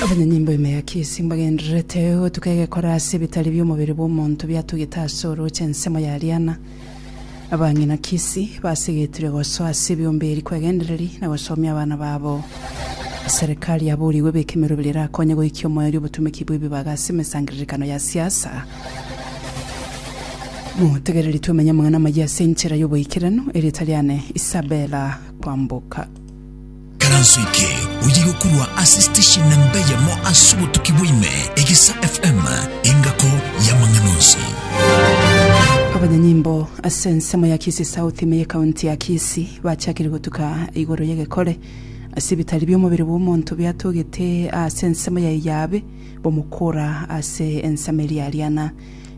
Abanyanyimbo ime ya Kisii mbagendererete gotuka egekora ase ebitari bi'omobere bw'omonto biatugete ase orooche ensemo ya Rihanna. Abang'ina Kisii basegetire gosoa ase ebiombe eri kwegendereri na gosomia abana babo. Serikali yaboorigwe ebeke emerwa ebere erakonye goikia omoerio obotumeki bw'ebibaga ase emesangererekano ya siasa. Motegereri twemenye amang'ana amayia ase enchera y'oboikeranu, erieta riane Isabella Kwamboka. Ekeranso eke oye gokorwa ase station namba eyemo ase obotuki bwaime, Egesa FM, engako y'amang'ana onsi. Abanyanyimbo ase ensemo ya Kisii South ime ye County ya Kisii bachakire gotuka igoro y'egekore ase ebitari bi'omobere bw'omonto biatogete aase ensemo yaye y'abe b'omokora ase ensemo eria Ariana.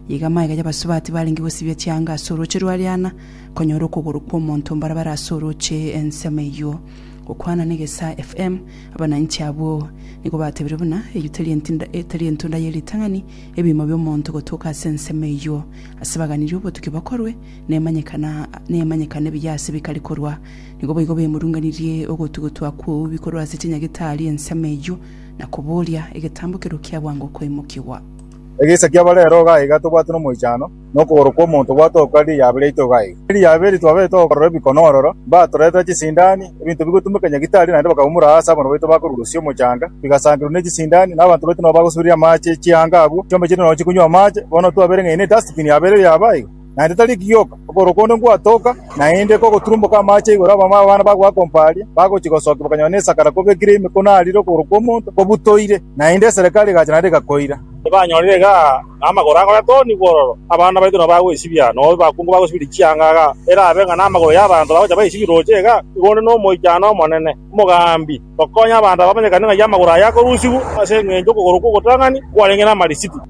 Iga amaega y'abasubati barenge gosibia chianga ase orooche rw'Ariana Konyora okogoro kw'omonto mbarabara ase orooche ensemo eyio. Gokwana na Egesaa FM, abananchi abwo nigo batebirie buna eyio tari entinda- eh, tari entunda ye ritang'ani, ebiimo bi'omonto gotoka ase ensemo eyio. Ase baganirie obotuki bokorwe, nemanyekana nemanyekana ebiya ase bikari korwa. Nigo boigo bemurunganirie ogotugutwa kw'eubi korwa ase chinyagete aaria ensemo eyio, na kobooria, Egetambo kerokio abwango koimokigwa? Egesa kiabarero iga tobwate nomoichano. na okogoro kw'omonto gwatoka riria yabire itoga eye. Riria yabire twabete gokorora ebikono ororo, mbatoretera chisindani, ebinto bigotumeka nyagitari, naende bakabumura aase abana baito bakorusia omochanga, bigasangerwa n'echisindani, na abanto baito nabo bagosuriria amache chianga abwo, chiombe chire nonya chikonywa amache. Bono twabere ng'aini edustbin yabere erio yaba iga, naende tari ekigioka, okogoro konde ngwatoka, naende kogoturumboka amache igoro, abamama b'abana bagoakompa aria, bagochia gosokia bakanyora nesakara kobekire ime, konarire okogoro kw'omonto kobutoire, naende eserekari egacha naende egakoira. Tibanyorire igaa. na amagoro agoyatoonigwa ororo, abana baito nabo bagoesibia, na obe bakungu bagosibiria chianga iga, erabe ng'a namagoro y'abanto bagocha baisibia rooche iga, igo onde nomoichano omonene, omogambi, gokonya abanto aba bamanyekane ng'ai amagoro aye akorusigwa ase engencho y'okogoro kw'ogotang'ani kwarenge namarisitu.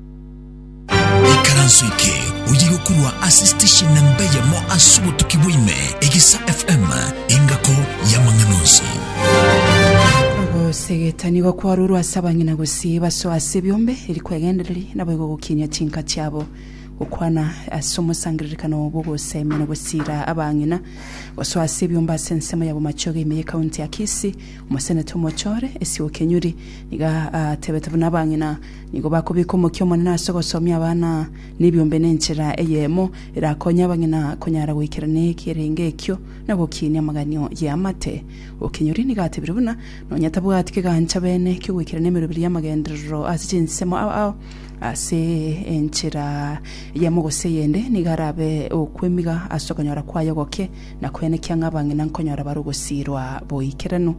Ikaranso eke oye gokorwa ase station namba eyemo ase obotuki bwa ime, Egesa FM, engako y'amang'ana onsi. Ogosegetania igo kwarurwa ase abang'ina gose. Chibaso ase ebiombe eri kwegendereri, naboigo gokinyia chinka chiabo, gokwana ase omosangererekano bw'ogoseemia na gosiira abang'ina. Gosoa ase ebiombe ase ensemo ya bomachoge ime ye County ya Kisii, Omoseneta Omochore, Esio Kenyuri, nigo ateebete buna abang'ina nigo bakobeka omokia omonene ase ogosomia abana nebiombe nenchera eyemo erakonye abang'ina konyara goikerania ekerenge ekio na gokiinia amaganio y'amate. Okenyuri nigo atebire buna Nonya tabwati kegancha beene ki'ogwekera nemeroberi y'amagenderero ase chinsemo ao ase enchera eyemo gose eyende, nigo arabe okwemiga ase okonyora kwaye ogoke na kwenekia ng'a abang'ina nkonyora bare ogosiirwa boikeranu,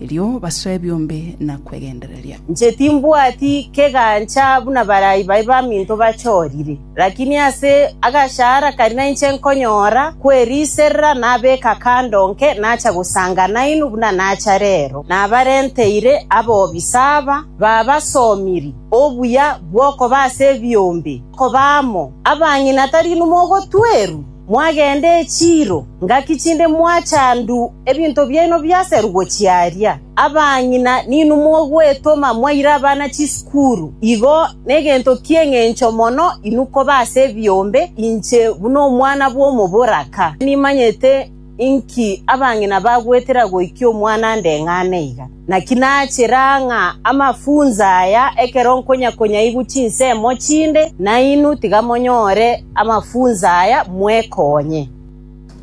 erio basoe ebiombe na kwegendereria. Inche timbwati kegancha buna barai baye baminto bachorire. Lakini ase agachara karia nainche nkonyora kweriiserera nabeka kando nke nacha gosanga nainwe buna nacha rero. Nabarenteire abobisa aba, babasomiri obuya bw'okoba ase ebiombe, koba amo abang'ina tari inwe mogotwerwa? Mwagende echiiro ngaki chinde mwachandu ebinto biaino biaserugwe chiaria. Abang'ina ninwe mogwetoma mwaire abana chisukuru. Igo negento ki'engencho mono inwe koba ase ebiombe inche buna omwana bw'omoboraka. Nimanyete Inki abang'ina bagwetera goikia omwana ndeng'ane iga? Naki nachera ng'a amafunso aya ekero nkonyakonyaigwe chinsemo chinde, nainwe tiga monyore amafunso aya mwekonye.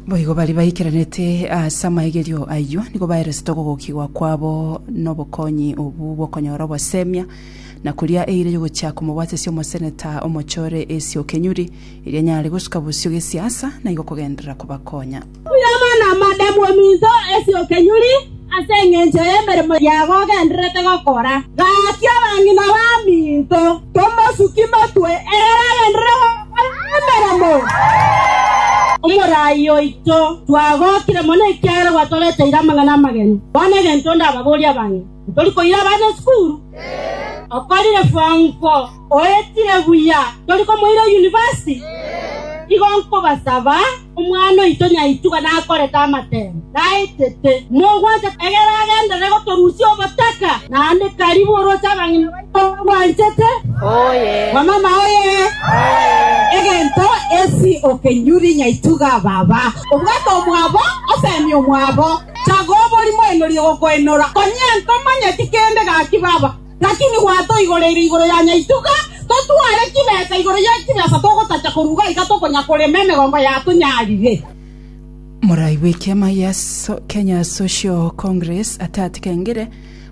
Boigo baria baikeranete ase amaigerio ayio nigo baeresete okogokigwa kwabo nobokonyi obwo bw'okonyora obosemia, na koria eira y'ogochia komobwatisia omoseneta omochore Esio Kenyuri, Erio anyare gosuka bosio gesiasa na igo kogenderera kobakonya. Irama namande bw'ominto esio kenyuri ase engencho y'emeremo yago ogendererete gokora. Gaki abang'ina b'aminto tomosuki motwe ekero agenderere gokora emeremo. Omoraai oito, twagokire mono ekiagera gwatoreteire amang'ana amageni. Bono egento ndababorie abang'ina, tori koira abana esukuru? Okorire form four? Oetire buya, tori komoira yunivasiti? Igo nkobasaba, omwana oito nyaituga nakorete amatemo, naetete, mogwanche egere agenderere gotorusia obotaka, naende karibu oroche abang'ina baito bagwanchete. Wamama oye! Egento esi okenyuri nyaituga baba. Obwate omwabo, osemie omwabo. Chaga oborimo enorie gokoenora. Konya ntomanyeti kende gaki baba. Naki nigwa toigoreire igoro ya nyaituga, totware chibesa igoro ye chibesa togotacha koruga iga tokonya korema emegongo yatunyarire. Morai bw'ekiama gia Kenya Social Congress Atati Kengire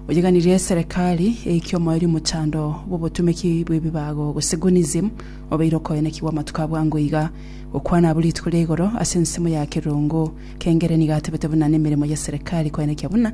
oyeganirie eserekari eike omoerio mochando bw'obotumeki bw'ebibago gose Gunism obeire okoenekigwa amatuko abwango iga. Gokwana abwo rituko ria igoro ase ensemo ya Kerongo, Kengire nigo atebete buna nemeremo y'eserekari koenekia buna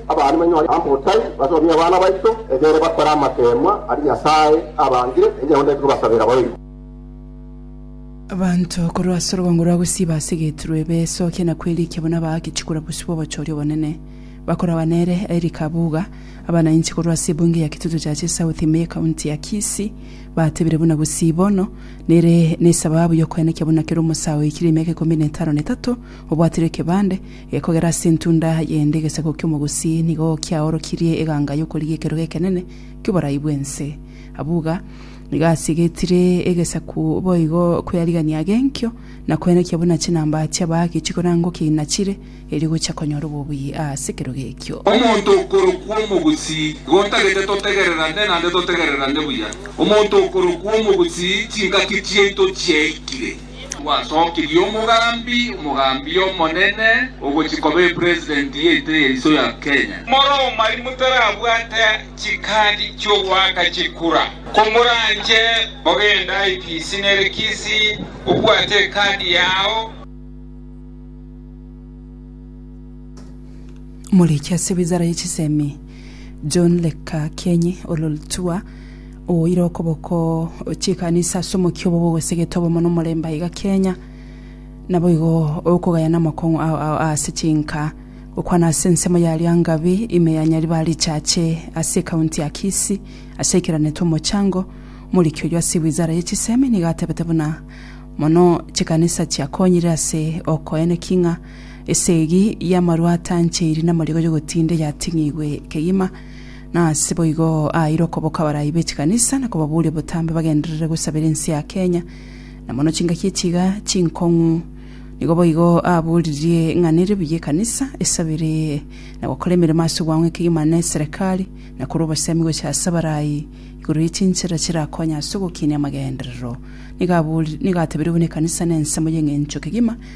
Abana banyore amotai basomie abana baito, egere bakore amateemwa aria Nyasae abangire, enchera onde tikobasabera boigo. Abanto korwa ase orobongo rwa gusii basegetirwe ebesokia na kwerikia buna abaaki chikura bosio bw'obochori obonene. Bakoragwa nere Eric Kabuga, abana inche korwa ase ebunge ya Kitutu Churches South ime y'ekaunti ya Kisii, batebire buna gusii bono nere nesababu y'okoenekia buna kera omosae oikire emyaka ikomi na etano na etato obwatire ekebande, Ekogera ase entunda y'ende egesabo ki'omogusi nigo kiaorokirie eganga y'okorigia ekerogo ekenene ki'oborai bw'ense. Abuga nigo asigetire egesaku boigo kw'earigania age enkio, na kwenekia buna chinamba chi'abaagi chikorangwa kiina chire, erio gocha konyora obobuya ase ekerogo ekio. Omonto okorokwa omogusi, igo ntagete totegererane naende totegererane buya. Omonto okorokwa omogusi, chingaki chiaito chiaikire. Gwatokirie omogambi, omogambi omonene, ogochia koba epresident yaito ya iso ya Kenya. More omari motarabwate chikadi chiogoaka chikura. Komoranche ogende IPC nere Kisii obwate ekadi yao. Moreche ase ewizara ye chisemi. John Lekakienyi Ololtua, oire okoboko chikanisa ase omokia obo bogosegete obomo na omorembe aiga Kenya. Naboigo okogayana amakong'u ao ao ase chinka gokwana ase ensemo ya Lyangabi ime ya Nyaribari Church ase ekaunti ya Kisii asaikeranete omochango. Omoriki oyio ase wizara ye chisemi nigo atebete buna mono chikanisa chiakonyire ase okoeneki ng'a Esegi y'amarwa atancheiri namarigo y'ogotinda eyating'igwe kegima, na ase boigo aaeire okoboka abarai be chikanisa na kobaboria botambe bagenderere gosabera ense ya Kenya, na mono chingaki echiga chinkong'u. Nigo boigo aboririe ng'a nere buya ekanisa esabere na gokora emeremo ase ogwang'wa kegima ne Serekari, na korwa obosemi gochia ase abarai igoro ye chinchera chirakonye ase ogokinia amagenderero. Nigo abori nigo atabeire buna ekanisa nensemo y'eng'encho kegima,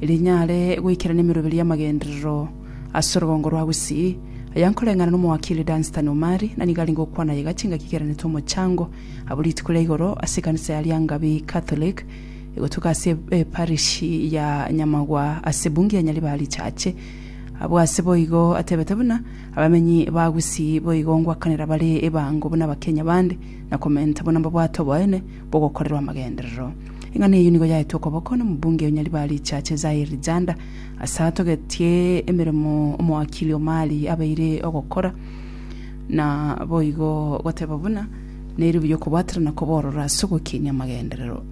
rinyare goikerana emeroberi y'amagenderero ase orogongo rwa Gusii, aya nkoreng'ana n'omowakili Dunstan Omari, na nigo arenge gokwana aye gati ngaki keranete omochango abwo rituko ria igoro ase ekanisa ya Liangabi Catholic egotuka ase eparishi ya Nyamagwa ase Bunge ya Nyaribari Church. Abwo ase boigo atebete buna abamenyi ba Gusii boigo ngwakanera bare ebango buna Abakenya bande na komenta buna mbabwate oboene bogokorerwa amagenderero. Eng'ana eyio nigo yaetwe okoboko nomobunge o Nyaribari Chache Zaire Janda ase atogetie emeremo omowakili omari abeire ogokora na boigo goteba buna neri buya okobwatera na koborora ase ogokinia amagenderero.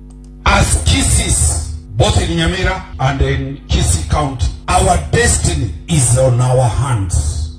As Kissis, both in Nyamira and in Kisii County, our destiny is on our hands.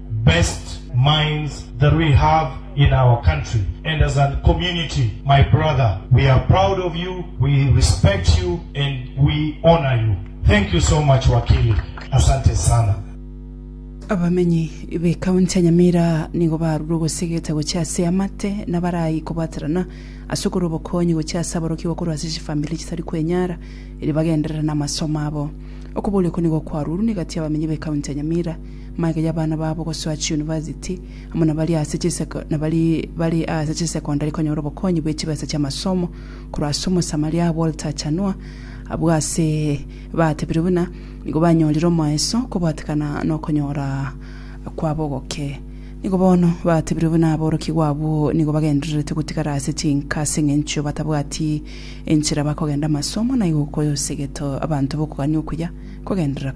best minds that we have in our country and as an community my brother we are proud of you we respect you and we honour you thank you so much wakili asante sana. Abamenyi b'Ekaunti ya Nyamira nigo barure ogosegeta gochia ase amate nabarai kobwaterana ase okorwa obokonyi gochia ase aborokigwa korwa ase chifamiri chitari kwenyara erio bagenderere namasomo abo. Okoboria oko nigo kwarurwe negati y'abamenyi b'Ekaunti ya Nyamira Magega y'abana babo gosoa chiunivasiti, amo nabari ase chiseko nabari bari ase chisecondary konyora obokonyi bwe chibesa chi'amasomo korwa ase Omosamaria Walter Chanua, abwo ase batebire buna nigo banyorire omoeso kobwatekana nokonyora kwabo ogoke. Nigo bono batebire buna aborokigwa abwo nigo bagendererete gotigara ase chinka ase engencho batabwati enchera bakogenda amasomo naigo koyosegeto abanto bokogania okuya kogenderera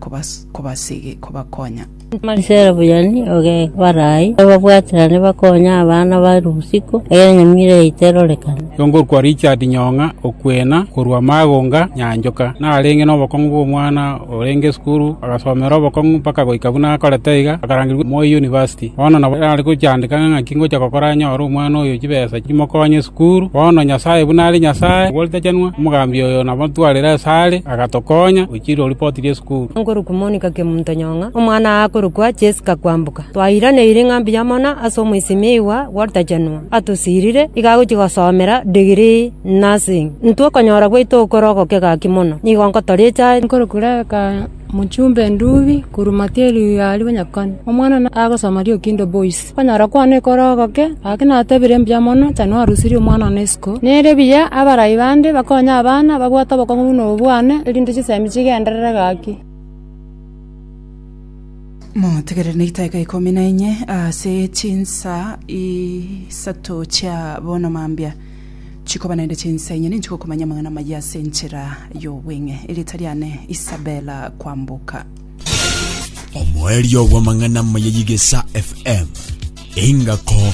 kobasege kobakonya. Marisera Buyani oge barai bababwaterane bakonye abana ba Rusiko, egere nyomio ere yaito erorekane. Yongorokwa Richard Nyong'a Okwena korwa Magonga, Nyanchoka, narenge nobokong'u bw'omwana orenge esukuru, agasomera obokong'u mpaka goika buna akorete iga, akarangerigwa Moi University. Bono nabo are gochandeka ng'a ng'aki ngocha gokora nyore omwana oyo chibesa chimokonye esukuru. Bono Nyasae buna are Nyasae, oboritachanwa, omogambi oyo nabatwarire asare. agatokonya gochira oripoti ri'esukuru. Nkorokwa Monica Kemuntonyong'a, omwana oye akorokwa Jessica Kwambuka. Twairaneire ng'a mbuya mono ase omoisimigwa Walter Chanua atosirire iga agochia gosomera degree Nursing. Intwe okonyora gwaito okore ogoke gaki mono, nigo nkotoricha aye. Nkorokwa Rebecca Muchumbe Ndubi korwa Matieri Rigaari Bonyakoni, omwana oye agosoma Riokindo Boys. Okonyora kwao nekore ogoke, gaki natebire mbuya mono, Tani orusirie omwana one isiko. Nere buya abarai bande bakonye abana babwate obokong'u buna obo bwane, erinde chisemi chigenderere gaki. Motegerere neitaika ikomi na inye ase chinsa isato chia bono mambia, chikoba naende chinsa inye ninche gokomanya amang'ana amayia ase enchera y'obweng'e. Erieta riane Isabella Kwamboka. Omoerio bw'amang'ana amaya y'Egesa FM, engako